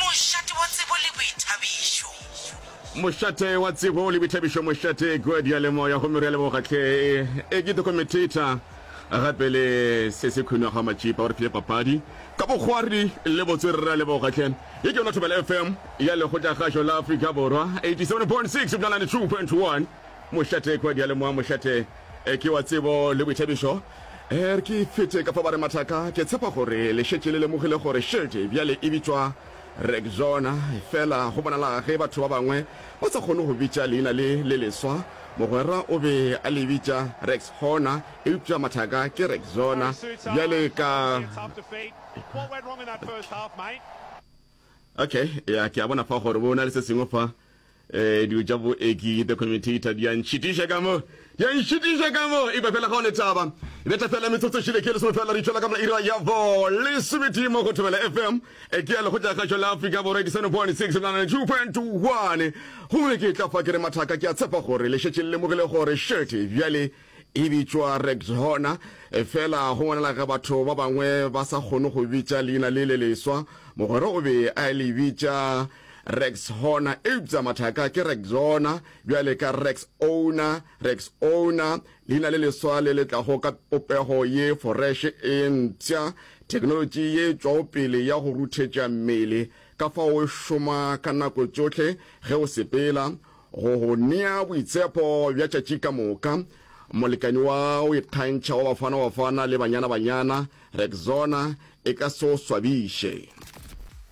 Mošate wa tsebo le boithabišo. Mošate wa tsebo le boithabišo Mošate kua diyalemoya gomme re a leboga hle e ke dokumentator gape le se se khwino ga matšipa o re file papadi ka bokgwari le botswerere a leboga hle ye ke yona thobela fm ya lekgotla kgašo la afrika borwa 87.6 ebjana 92.1 Mošate kua diyalemoya Mošate e ke wa tsebo le boithabišo Er ke fete ka fa ba re mathaka, ke tshepa gore le šetše le lemogile gore šedi bjale e bitšwa Rexona. Efela go bonala ge batho ba bangwe ba sa kgone go bitša leina le le leswa. Mogwera o be a le bitša Rexona, eupša mathaka ke Rexona bjale ka. Okay, ya ke a bona fa gore bo na le se sengwe fa. Ee, dilo tša boeki, the commutator, di a ntšhitiša ka mo, di a ntšhitiša ka mo. Epa fela ga o letaba. E beta fela metsotso šele ke lesome fela re tšwela ka mona ira ya bo lesometee mo go Thobela FM. E ke ya lekgotšakgašo la Afrika Borwa ke seno bone six nine two point one. Gomme ke tla fa ke re mathaka ke a tshepa gore le šetše le lemogile gore šete bjale e bitšwa rect hona e fela go ngwanela ga batho ba bangwe ba sa kgone go bitša leina le le leswa mogwera o be a le bitša Rex Hona, euptsa mathaka ke Rex Zona, bjale ka Rex Owner, Rex Owner, leina le leswa le le tlago ka popego ye foreshe e mpsha, theknolotši ye tšwaopele ya go ruthetša mmele ka fao e šoma ka nako tšohle ge o sepela, go go nea boitshepo bja tšatši ka moka. Molekani wa go ikgantšha wa Bafana-Bafana le Banyana-Banyana, Rex Zona, e ka se o swabiše.